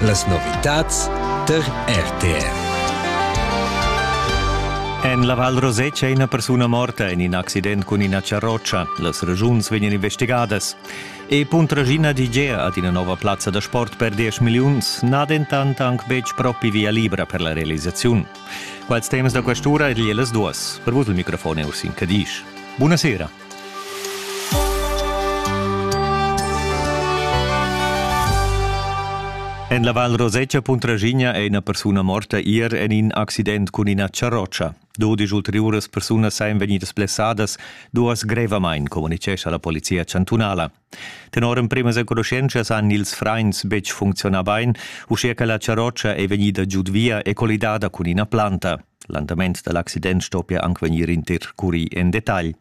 Las novitads tar RTR. En la Val Rosetscha è ina persuna morta en in accident cun ina charrotscha. Las regiuns vegnan investigadas. E Puntragina DJ ha ina nova plazza da sport per 10 milliuns n'ha dentant anc betg propi via libra per la realisaziun. Quals temas da quest'ura e las duas. Per vus il microfon è Ursin Cadisch. Buonasera. En la Val Rosetscha Puntraschigna è ina persuna morta ier en in accident cun ina charrotscha. Dodisch ulteriuras persunas sajan vegnidas blessadas, duas grevamain, communitgescha la polizia chantunala. Tenor emprimas enconuschentschas han ils frains betg funcziunà bain, uschia che la charrotscha è vegnida giud via e collidada cun ina planta. L'andament da l'accident stoppia anc vegnir intercurì en detagl.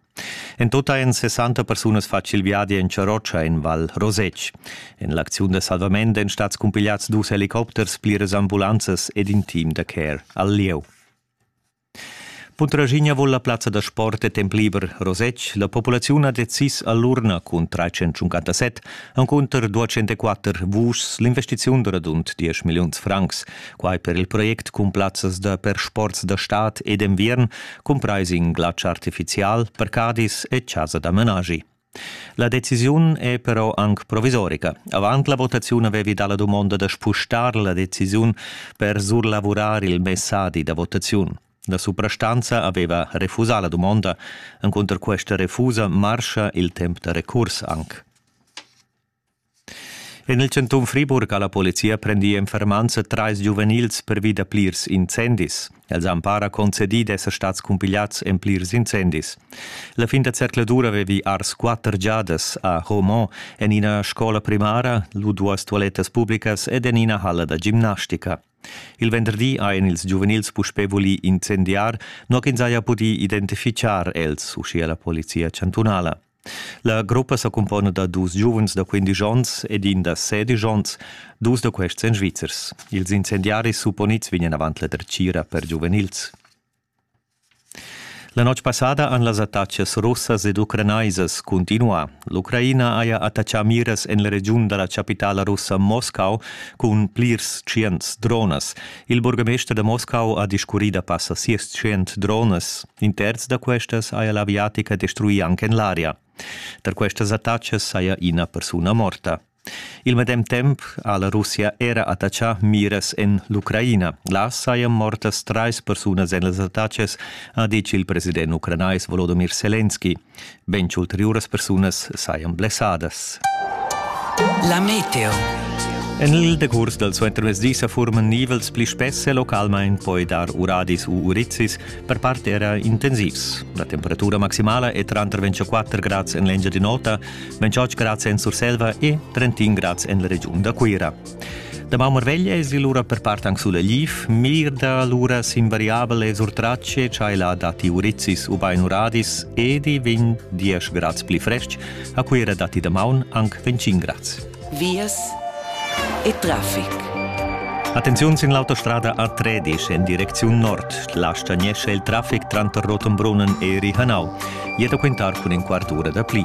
En tot ein 60 persunas fatg il viadi en Charrotscha en Val Rosec. En l'acziun da salvament èn stats cumpigliads dus helicopters, pliras ambulanzas ed in team da care al lieu. Puntraschigna voul la plazza da sport e temp liber Rosetsch. La populaziun ha decis a l'urna cun 357 encunter 204 vuschs l'investiziun da radund 10 milliuns francs. Quai per il project cun plazzas da per sports da stad e d'enviern, cumprais in glatsch artifizial, parcadis e chasa da menagi. La decisiun è però anc provisorica. Avant la votaziun avevi dà la dumonda da spustar la decisiun per surlavurar il messadi da votaziun. La suprastanza aveva refusà la dumonda. Encunter questa refusa marscha il temp da recurs anc. En il chantun Friburg ha la polizia prendì en fermanza trais giuvenils pervi da plirs incendis. Els han para concedì d'esser stads cumpigliads en plirs incendis. La fin da zercladur avevi ars quatter giadas a Homont en ina scola primara, lu duas tualettas publicas ed en ina halla da gimnastica. Il venderdi hajan ils giuvenils puspè vulì incendiar, nua ch'ins haja pudì identifichar els, uschia la polizia chantunala. La gruppa sa cumpona da dus giuvens da quindisch onns ed in da sedisch onns, dus da questi en Svizzers. Ils incendiaris supponids vegnan avant la dretgira per giuvenils. La notg passada han las attacas russas ed ucranaisas continuà. L'Ucraina haja attachà miras en la regiun da la chapitala russa Moscau cun plirs tschients dronas. Il burgamester da Moscau ha discurrì da passa sias tschient dronas. In terz da questas haja l'aviatica destruì anc en l'aria. Tar questas attacas saja ina persuna morta. Il medem temp ha la Russia era attaccà miras en l'Ucraina. Là sajan mortas trais persunas en las attacas, ha ditg il president ucranais Volodymyr Selenski. Bein che ulteriuras persunas sajan blessadas. La meteo. En il decurs dal suentermezdi sa furman nivels pli spess e localmain poi dar uradis u urizis, per part era intensivs. La temperatura maximala è tranter 24 grads en l'Engiadin'Ota, 28 grads en Surselva e 31 grads en la regiun da Cuira. Damaun marveglia es il ura per part anc sulla gliif, mirda l'ura sinvariabel es urtrace cha el ha datti urizis ubain uradis ed i vegn diesch grads pli fresc, a Cuira datti damaun anc 25 grads. Vias e trafic. Attenziun sin l'autostrada A13 en direcziun nord. La stagnesce il traffic tranter Rotenbrunnen e Rihanau. Jeta quintar cun in quart ura da pli.